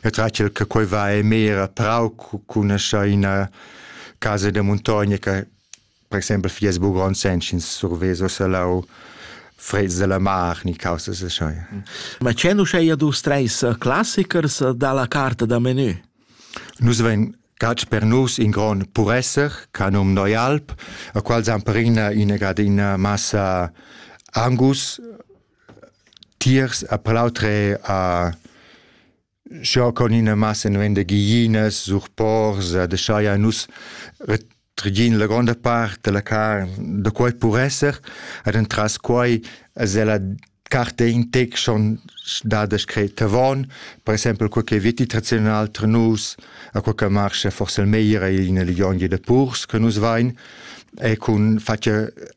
E tracel che quei va e mera prau cun asa ina casa de muntogna che per exempel fies bugon senschins surveso salau freds della mar ni causas așa. Ma c'è nu scheia dus treis classichers dalla carta da menu? Nus ven catsch per nus in gron puresser, canum Neualp, a qual zamperina ina gadina massa Angus, tiers a palautре a scha con ina massa nu venda giglinas sur pors a deschaja nus retregin la gronda part della carn da quai pur esser ed entras quai es ella carte in tec schon dada scret avon per exempel quel che viti tradizional tra nus a quel che marscha forse il meglier è in legion de purs che nus vain e cun fatja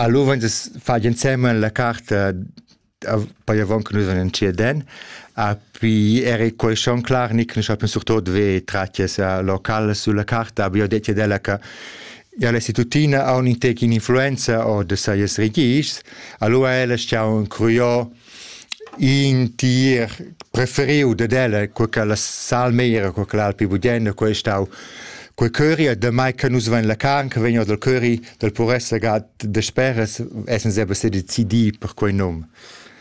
Alura vegn fatg ensemen la carta poi avon che nus vegnir entschieden. A pi eri quei schon clar ni che nus sappian surtot ver tratgs locals sulla carta, aber io detg ad ella che ja, la istitutina ha un intec influenza o da seis regists, allura ella stau curios in tier preferiu dad ella cur che la salmeira cur che l'alpi budena quei ei stau quei curry damai che nus vein la carn che vegn dal curry dal puress legat dasperas essen seba sedecidi per quei num.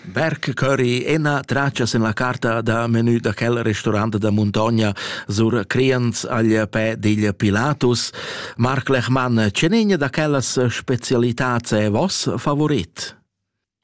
Berg Curry, ena traccias en la carta da menü da quel restaurant da Montogna sur Criens agl pe digl Pilatus. Marc Lechmann, cenegna da quellas specialitats è vos favorit?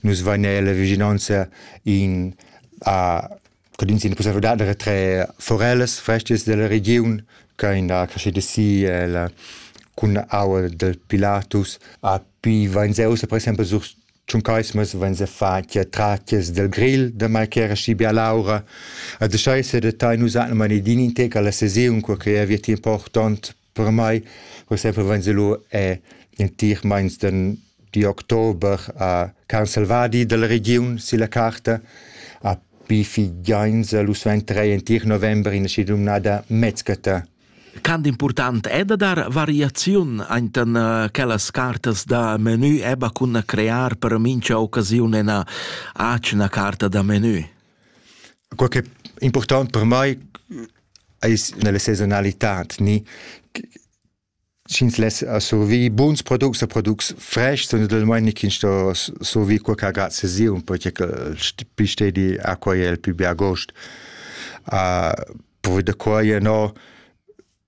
Nus vain eir la vigilanza in a Codins in conservedad da tre forellas frestas della region che in da crescida si el cun aua del Pilatus a pi vain se usa per esempio sur Tschuncaismas vain se fatia tratias del grill da mai che era schi bia laura a de scheise de tai nus hanno mani din in te alla sesiun qua che è via ti important Per mai, per esempio, wenn sie lu è in tir meins den di Oktober a Carl Salvadi della regiun silla carta a Bifi Gainza lu suenterei in tir november in schi dumnada Metzgata. Quant important è da dar variaziun enten uh, quellas cartas da menü eba cun crear per mincha occasiun ena acna carta da menü? Quai che è important per mai è nella sezonalità ni sch'ins less survir buns products e products fraigs, naturalmein ni ch'ins sto survir quei che agrada ses irn, perche che il pli stedi acqua è il pli bia gost. Uh, provi da quai ennà